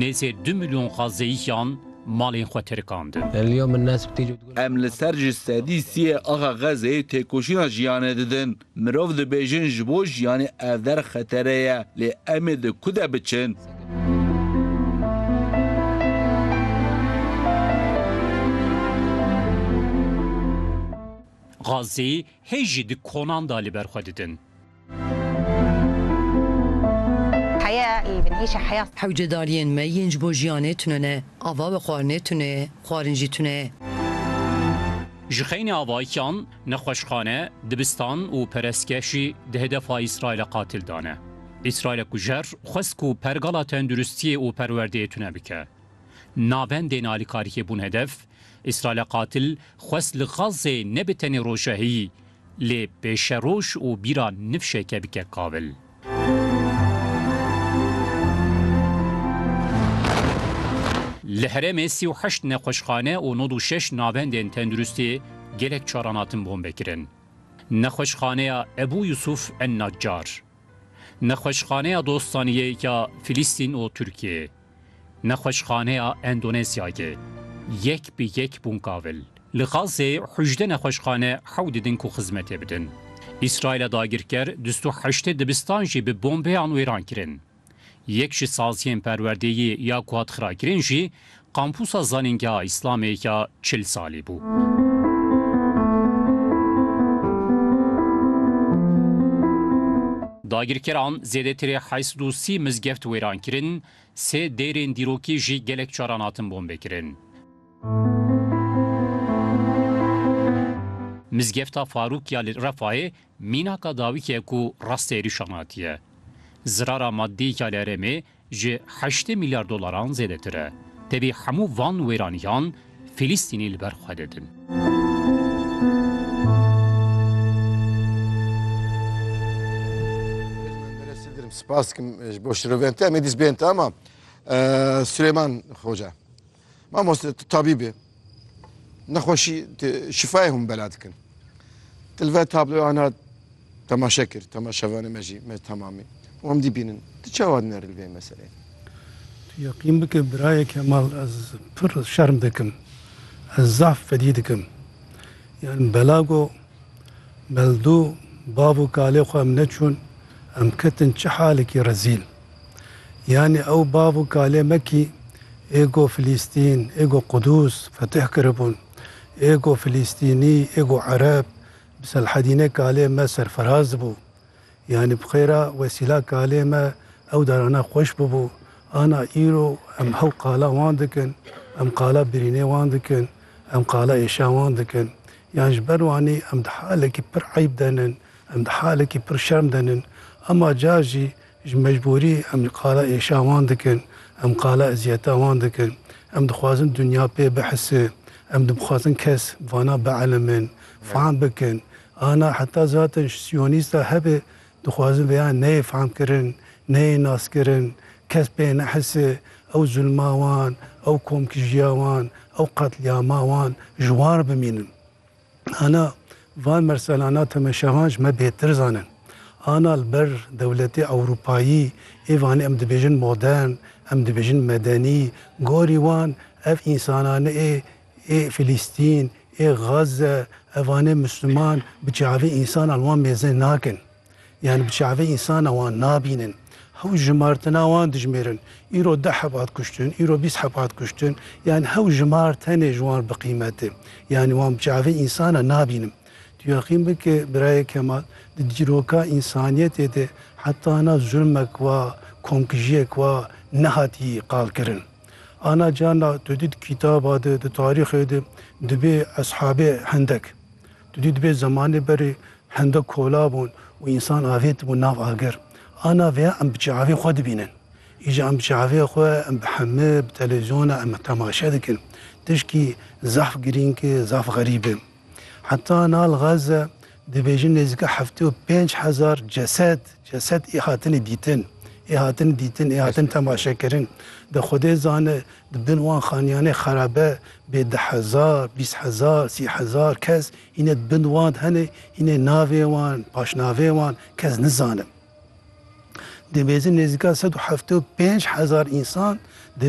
Nêzê du milyon xazeyîyan malên xwe tirkandin. Em li ser ji sedî sî yê axa Xezê têkoşîna jiyanê didin. Mirov dibêjin ji bo jiyanê ev der xetere ye, lê em ê di ku de biçin? Xazê hê jî di konan de li ber xwe didin. Heya î bin hîşa heya. Hewce daliyên me yên ji bo jiyanê tune ne. Ava bi xwarinê tune ye, xwarin jî tune ye. Ji xeynê avayikan, nexweşxane, dibistan û perestgeşî di hedefa Îsraîla qatil de ne. Îsraîla kujer xwest ku pergala tenduristiyê û perwerdeyê tune bike. Navendên alîkarikê bûn hedef, Îsraîla qatil xwest li Xazzê ne bi tenê rojehiyî, Lê pêşe roj û bîra nifşeke bike kabil. Li herêmê sî û heşt nexweşxane û nod û şeş navendên tenduristî gelek caran hatin bombekirin. Nexweşxaneya Ebû Yusuf en Necar. Nexweşxaneya Dostaniyê ya Filistîn û Tirkiyê, Nexweşxaneya Endonezyayê yek bi yek bûn kavil. Li Xazzê hûjdeh nexweşxane hew didin ku xizmetê bidin. Îsraîla dagirker du sed û heştê dibistan jî bi bombeyan wêran kirin. Yek ji saziyên perwerdeyî ya ku hat xirakirin jî Kampûsa Zanîngeha Îslamê ya çil salî bû. Dagirkeran zêdetirê heşt sed û sî mizgeft wêran kirin, sê deyrên dîrokî jî gelek caran hatin bombekirin. Mizgefta Farûk ya li Refayê Mînaka dawîkê ku rastî êrîşan hatiye, zirara maddî ya li herêmê ji heştê mîlyar dolaran zêdetir e. Tevî hemû van wêranîyan Fîlîstînî li ber xwe didin. Spas dikim ji bo şirovên te. Em ê dîs bên te ama Suleyman Xoca. Mamoste tu tabîb î. Nexweşî şifayê hûn bela dikin. Ti li ver tabloya ana temaşe kir, temaşevanê me jî me temamî. Wan dî bînin. Ti çawa diner li vê meseleyê? Tu yeqîn bike birayê Kemal ez pir şerm dikim. Ez zaf fedî dikim. Yan bela go meldû bav û kalê xwe em neçûn, em ketin çi halekî rezîl. Yanî ew bav û kalê me kî ê go Filîstîn, ê go Qudûs fetih kiribûn, ê go Filîstînî, ê go Ereb bi Selhedînê kalê me serfiraz bû. Yanî bi xêra wesîla kalê me ew darana xweş bûbû. Ana îro em hew qala wan dikin, em qala birînê wan dikin, em qala êşa wan dikin. Yan ji ber wanî em di halekî pir eyb de nin, em di halekî pir şerm de nin. Ema car jî Ji mecbûrî em ji qala êşa wan dikin, em qala eziyetan wan dikin. Em dixwazin dinya pê bihise, em dibixwazin kes bi vana bielmin, fehm bikin. Ana heta zaten ji siyonîsta hebe dixwazin vêya neyê fehmkirin, neyê naskirin, kes pê nehise, ew zulma wan, ew komkijiya wan, ew qetlîama wan ji wan re bimînin. Ana van merselana temeşevan ji me bêtir zanin. Ana li ber dewletê ewropayî ê vanê em dibêjin modern, em dibêjin medenî, gorî wan ev însanane ê ê Filîstîn, ê Gaze, ev vanê Misliman bi çavê însanan wan mêze nakin. Yan bi çavê însanan wan nabînin. Hew jimartina wan dijmêrin. Îro deh heb hat kuştin, îro bîst heb hat kuştin. Yan hew jimar tenê ji wan bi qîmet e. Yanî wan bi çavê însanan nabînim. Tu yaqîn bike Birayê Kemal, di dîroka însaniyetê de heta na zulmek wa, komkijiyek wa nehatî qalkirin. Ana carna tu dît kitaba de, di tarîxê de dibê eshabê hindek. Tu dî divê zemanê berê hende kola bûn û însan avêtibûn nav agir. A navê ya em bi çavê xwe dibînin. Îja em bi çavê xwe, em bi heme, bi televîzyona em temaşe dikin. Tişkî zaf girîng e, zaf xerîb e. Heta Nal Gaze dibêjin nêzîka heftê û pênc hezar cesed, cesed ê hatine dîtin. Ê hatine dîtin, ê hatine temaşekirin. De Xwedê zane Di bin wan xaniyanê xerabe bê deh hezar, bîst hezar, sî hezar kes hîne di bin wan de hene, hîne navê wan, paşnavê wan kes nizanim. Dimêzin nêzîka sed û heft û pênc hezar însan di.